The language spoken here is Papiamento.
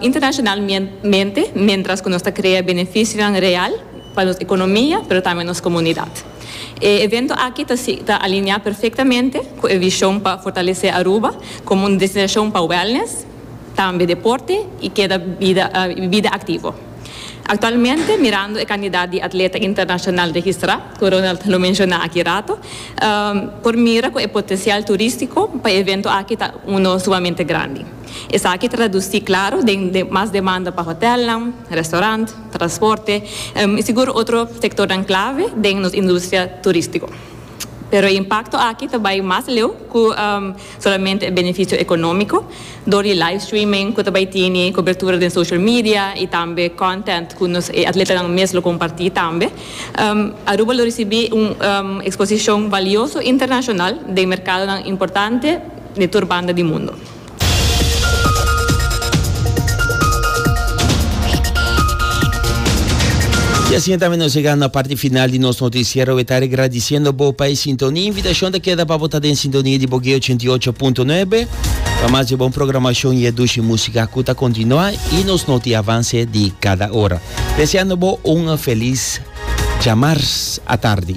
internacionalmente mientras cu nos ta crea beneficionan real pa nos economia pero tambe nos comunidad. E evento aki ta ta alinea perfectamente cu e vision pa fortalece Aruba como un destinacion pa wellness, tambe deporte y keda bida bida activo. Actualmente mirando e cantidad di atleta internacional registra cu Ronald lo menciona aki rato por mira cu e potencial turistico pa e evento aki ta uno sumamente grandi. Esaki traduci claro den mas demanda pa hotelnan, restaurant, transporte y sigur otro sectornan clave den nos industria turistico. Pero e impacto aki ta bay mas leu cu solamente e beneficio economico door di live streaming cu ta bay tini cobertura den social media y tambe content cu nos e atletanan mes lo comparti tambe. Aruba lo ricibi un exposicion valioso internacional den mercadonan importante di tur banda di mundo. Y asina tambe nos llega na parti final di nos noticiero. We ta agradeciendo bo pa e sintonia. Invitacion ta keda pa bo ta den sintonia di Bogué 88.9. Pa mas di bon programacion y e dushi musica cu ta continua y nos noti avance di cada ora. Deseando bo un feliz djamars atardi.